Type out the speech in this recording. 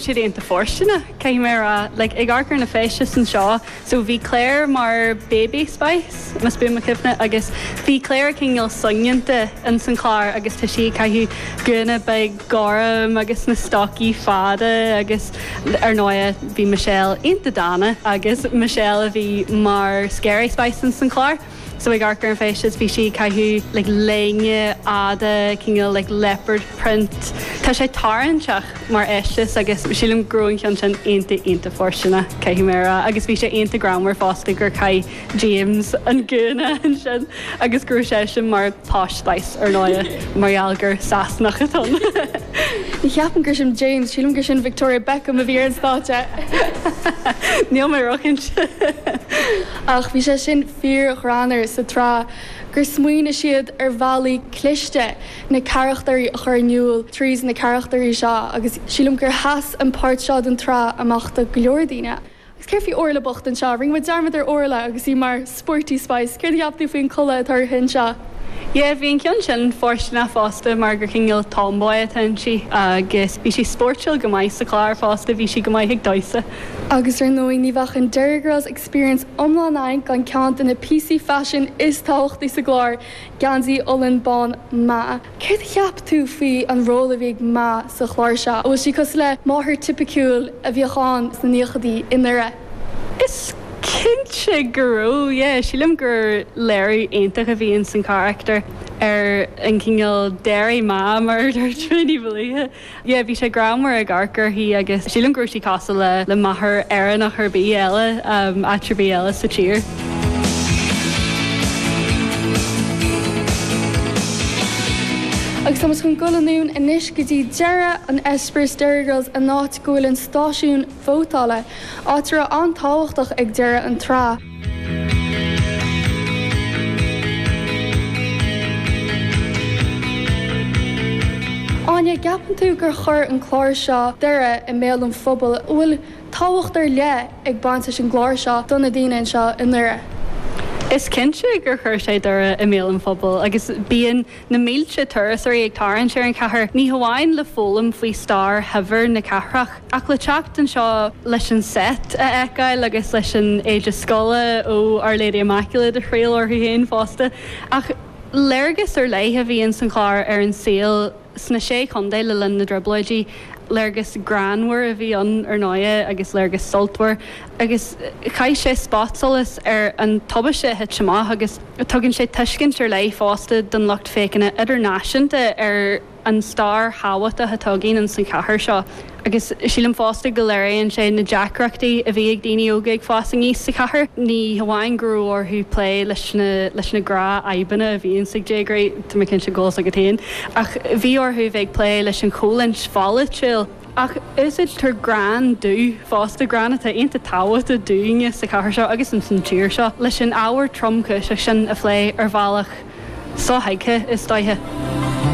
siad iontach fóirsteanach, caithfidh mé a rá. Like, ag amharc ar na feistis anseo, so bhí Claire mar baby spice, más buan mo chuimhne, agus bhí Claire cineál soineanta in san chlár agus tá sí ag caitheamh gúna beag gorm agus na stocaí fada agus ar ndóighe bhí Michelle iontach dána agus Michelle a bhí mar scary spice in san chlár. so ag amharc ar an fheisteas a bhí sí ag caitheamh like léine fhada cineál like leopard print tá sé tarraingteach mar fheisteas agus sílim go raibh an ceann sin iontach iontach fóirsteanach caithfidh mé a rá agus bhí sé iontach greannmhar fosta gur chaith James an gúna ansin agus go raibh seisean mar posh spice ar ndóigh mar gheall gur Sasanach atá ann. Ní cheapaim gur sin James, sílim gur sin Victoria Beckham a bhí ar an stáitse! Níl mé róchinnte. Ach bhí sé sin fíor-ghreannmhar sa tsraith gur smaoinigh siad ar bhealaí cliste na carachtairí a chur in iúl tríd na carachtairí seo agus sílim gur sheas an páirt seo den tsraith amach do go leor daoine. Agus céard faoi Orla bocht anseo? Rinne muid dearmad ar Orla agus í mar Sporty Spice. Céard a cheap tú faoin gculaith atá uirthi anseo? Yeah, bhí an ceann sin fóirsteanach fosta mar gur cineál tomboy atá inti agus bhí sí spóirtiúil go maith sa chlár fosta, bhí sí go maith ag damhsa. Agus ar ndóigh ní bheadh an Derry Girls Experience iomlán againn gan ceann de na píosaí faisin is tábhachtaí sa gclár, geansaí olann bán Ma. Céard a cheap tú faoi an ról a bhí ag Ma sa chlár seo? An bhfuil sí cosúil le máthair tipiciúil a bhíodh ann sna naochaidí i nDoire? Is cinnte go raibh, yeah. Sílim gur léiriú iontach a bhí ins an charachtar ar an gcineál Derry Ma mar a dúirt mé níos luaithe. Yeah, bhí sé greannmhar ag amharc uirthi agus sílim go raibh sí cosúil le, le máthair Éireannach ar bith eile, um, áit ar bith eile sa tír. Agus tá muid chun dul anonn anois go dtí deireadh an experience Derry Girls an áit go bhfuil an stáisiún vótála, áit a raibh an-tábhachtach ag deireadh an tsraith. Áine, an gceapann tú gur chuir an clár seo Doire i mbéal an phobail, an bhfuil tábhacht ar leith ag baint leis an gclár seo do na daoine anseo i nDoire? Is cinnte gur chuir sé Doire i mbéal an phobail agus bíonn Na mílte turasóirí ag tarraingt ar an chathair, ní hamháin le foghlaim faoi stair shaibhir na cathrach, ach le teacht anseo leis an seit a fheiceáil agus leis an éide scoile ó Our Lady Immaculate a thriail orthu féin fosta. Ach léargas ar leith a bhí ins an chlár ar an saol sna sé chontae le linn na dTrioblóidí, léargas greannmhar a bhí ann ar ndóigh agus léargas sultmhar, agus chaith sé spotsolas ar an tubaiste a thit amach agus. Tugann sé tuiscint ar leith fosta don lucht féachana idirnáisiúnta ar an stair thábhachtach atá againn ins an chathair seo agus sílim fosta go léiríonn sé na deacrachtaí a bhí ag daoine óga ag fás aníos sa chathair. Ní hamháin go raibh orthu plé leis na gnáthfhadhbanna a bhíonns ag déagóirí, tá mé cinnte go bhfuil 's agat féin, ach bhí orthu a bheith ag plé leis an choimhlint pholaitiúil, Ach úsáidtear greann dubh fosta, greann atá iontach tábhachtach dúinne sa chathair seo agus ins an tír seo, leis an ábhar tromchúiseach sin a phlé ar bhealach sothuigthe, is dóiche.